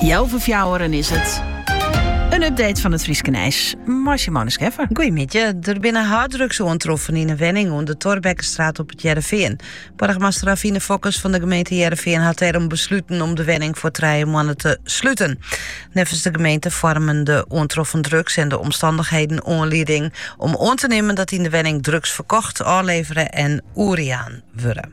Healwei fjouweren is it. In update fan it Fryske nijs mei Simone Scheffer. Goeiemiddei. Der binne harddrugs oantroffen yn in wenning oan de Thorbeckestraat op It Hearrenfean. Boargemaster Avine Fokkens fan de gemeente Hearrenfean hat dêrom besluten om de wenning foar trije moannen te sluten. Neffens de gemeente foarmen de oantroffen drugs en de omstannichheden oanlieding om oan te nimmen dat yn de wenning drugs ferkocht, ôflevere en oerjaan wurden.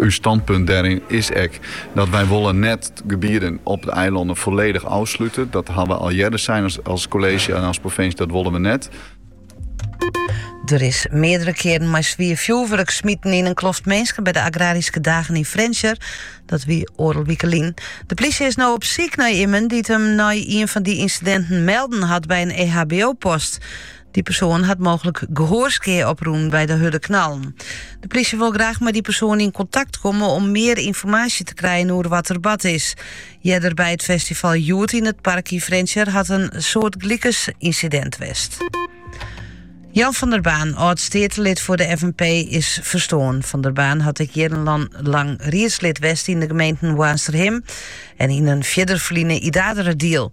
Us stânpunt dêryn is ek dat wy wolle net gebieden op de eilannen foarledich ôfslute. Dat ha we al earder sein as kolleezje en as provinsje, dat wolle we net. Der is meardere kearen mei swier fjoerwurk smiten yn in kloft minsken by de agraryske dagen yn Frjentsjer. Dat wie oardel wike lyn. De plysje is no op syk nei immen dy't him nei ien fan dy ynsidinten melden hat by in EHBO-post. Dy persoan hat mooglik gehoorskea oprûn by de hurde knallen. De plysje wol graach mei dy persoan yn kontakt komme om mear ynformaasje te krijen oer wat der bard is. Earder by it festival Hjoed yn it park yn Frjentsjer hat in soartgelikens ynsidint west. Jan van der Baan, âld-steatelid foar de FNP, is ferstoarn. Van der Baan hat ek jierrenlang riedslid west yn de gemeenten Boarnsterhim en yn in fierder ferline Idaarderadiel.